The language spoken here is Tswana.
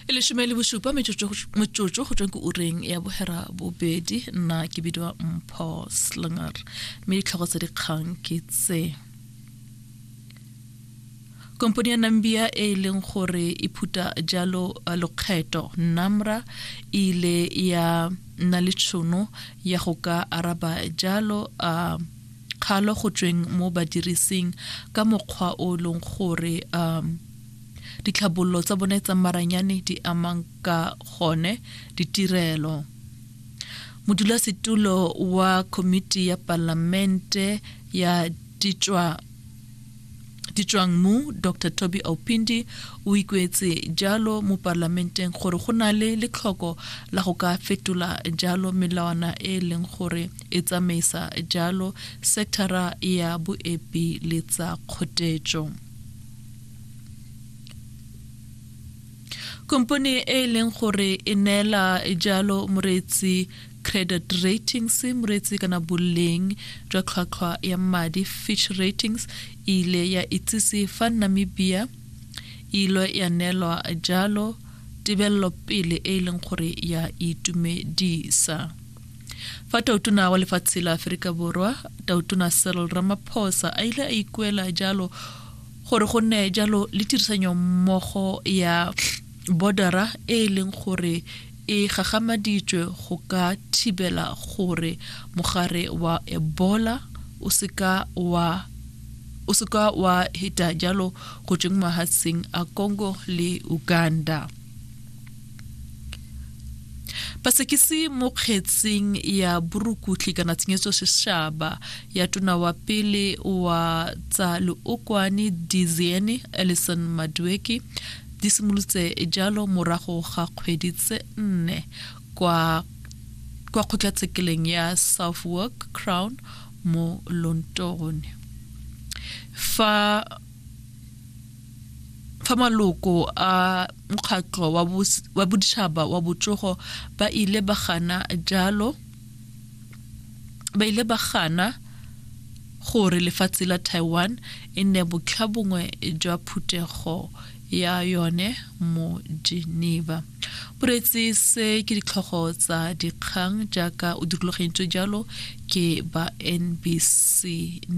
e leshome le bosupa metsotso go tsweng ke ureng ya bohera bobedi nna ke bidiwa mpho slinger mme ditlhogo tsa dikgang ke tse kompone ya nambia e e leng gore e phuta jalo uh, lokgetho namra e ile ya nna le tšhono ya go ka araba jalo a uh, Kgalo go tsweng mo badirising ka mokgwa o e leng gore um ditlhabololo tsa bone tsa maranyane di amang ka gone ditirelo modulasetulo wa komiti ya palamente ya ditswa Ditswang mu, Doctor Toby Aupindi o ikuetse jalo mo Palamenteng gore go na le letlhoko la go ka fetola jalo melawana e e leng gore e tsamaisa jalo sekthara ya boepi le tsa kgotetso. Kompone e e leng gore e neela jalo moreetsi Credit Ratings, moreetsi kana boleng jwa tlhwatlhwa ya madi, Fitch Ratings, e ile ya itsise fa Namibia e ilo ya neelwa jalo tebelelopele e e leng gore ya itumedisa. Fa tautona wa lefatshe la Aforika Borwa, Tautona Cyril Ramaphosa a ile a ikuela jalo gore go nne jalo le tirisanyommogo ya Bodara e e leng gore e gagamaditswe go ka thibela gore mogare wa Ebola o seka wa o seka wa heta jalo go tsweng mahatsheng a Congo le Uganda. Pasekisi mo kgetseng ya borukutlhi kana tshenyetso seshaba ya tona wa pele wa tsa leokwane Diziene Ellison Madueke Di simolotse jalo morago ga kgwedi tse nne kwa kwa kgotlatshekeleng ya Southwark Crown mo Lonton fa fa maloko a mokgatlho wa boditšhaba wa botsogo ba ile ba gana jalo ba ile ba gana gore lefatshe la Taiwan e nne botlhabongwe jwa phuthego ya yone mo Geneva. Boreetsi se ke ditlhogo tsa dikgang jaaka o dirologentse jalo ke ba NBC